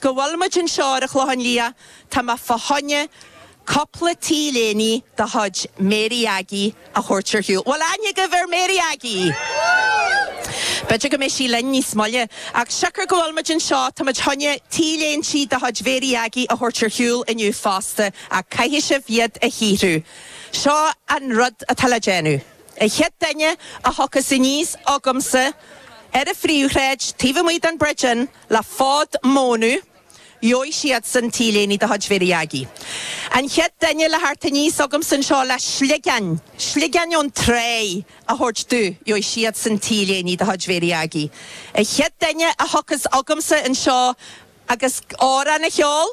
Go bhfuil muid anseo ar an Chlochán Liath, tá mé fá choinne cupla t-léine de chuid Mary Aggie a thabhairt ar shiúl. Bhfuil aithne agaibh ar Mary Aggie? B'fhéidir go mbeidh sí linn níos moille. Ach siocair go bhfuil muid anseo, tá muid fá choinne t-léintí de chuid Mhary Aggie a thabhairt ar shiúl inniu fosta, ach caithfidh sibh iad a shaothrú. Seo an rud atá le déanamh. An chéad duine a thiocfas aníos chugamsa ar an phríomhshráid taobh amuigh den Bridge Inn, Le fód mónadh, gheobhaidh siadsan t-léine de chuid Mhary Aggie. An chéad duine le theacht aníos chugamsa anseo le sligeáin, sligeáin ón tráigh, a thabhairt domh, gheobhaidh siadsan t-léine de chuid Mhary Aggie. An chéad duine a thiocfas chugamsa anseo agus amhrán a cheol,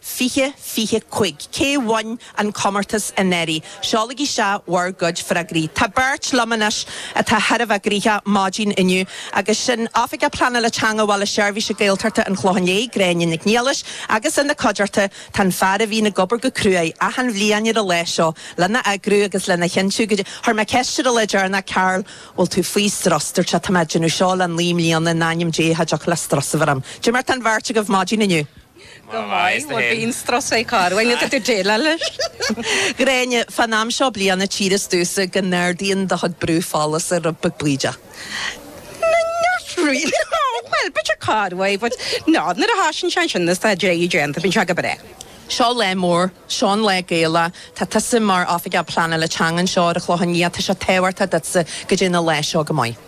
20, 25. Cé bhain an comórtas anuraidh? Seolaigí isteach bhur gcuid freagraí. Tá beirt liom anois atá thar a bheith gnoitheach maidin inniu agus sin Oifigeach Pleanála Teanga Bhaile Seirbhíse Gaeltachta an Chlocháin Léith, Gráinne Nic Niallais agus ina cuideachta tá an fear a bhíonn ag obair go cruaidh achan bhliain ar an lá seo lena eagrú agus lena chinntiú go Chuir mé ceist ar an lá deireanach Carl bhfuil tú faoi strus? Dúirt sé tá mé ag déanamh seo le naoi mbliana in ainm Dé cha dtiocfadh le strus a bheith orm. Dé mar tá an bheirt agaibh maidin inniu. Go maith, bhuel bíonn strus ort corruair ach tá tú ag déileáil leis. Gráinne, fán am seo bliana tchíthear domhsa go n-ardaíonn do chuid brú folasa rud beag bídeach. Not really, bhuel b'fhéidir corruair but no, nuair a thosaíonn sé ansin is tá dréacht déanta, bíonn sé go breá. Seo lá mór, seo an lá Gaelach, tá tusa mar Oifigeach Pleanála Teanga anseo ar an Chlochán Liath, tá sé tábhachtach duitse go dté an lá seo go maith.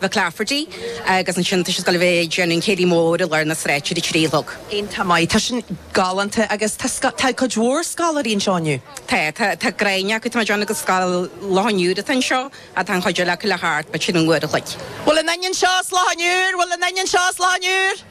McClafferty, agus ansin tá sise ag gabháil a bheith ag déanamh an céilí mór i lár na sráide ar a trí a chlog. Iontach maith. Tá sin galánta agus tá tá cuid mhór scoláirí anseo inniu. Tá, tá, tá gráinnín acu, tá muid ann agus Scoil Loch an Iúir atá anseo ach tá an chuid eile acu le theacht, b'fhéidir, an uair a chloig. Bhfuil aon duine anseo as Loch an Iúir, bhfuil aon duine anseo as Loch an Iúir.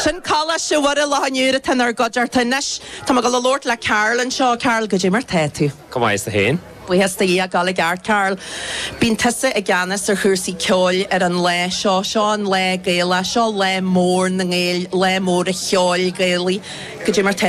Sin Coláiste Mhuire Loch an Iúir atá inár gcuideachta anois. Tá mé ag dul a labhairt le Karl anseo. Karl, goidé mar tá tú? Go maith, is tú féin? Buíochas do Dhia, ag gabháil i gceart, Karl. Bíonn tusa i gceannas ar chúrsaí ceoil ar an lá seo. Seo an lá Gaelach, seo lá mór na nGael, lá mór an cheoil Ghaelaigh. Goidé mar tá tú?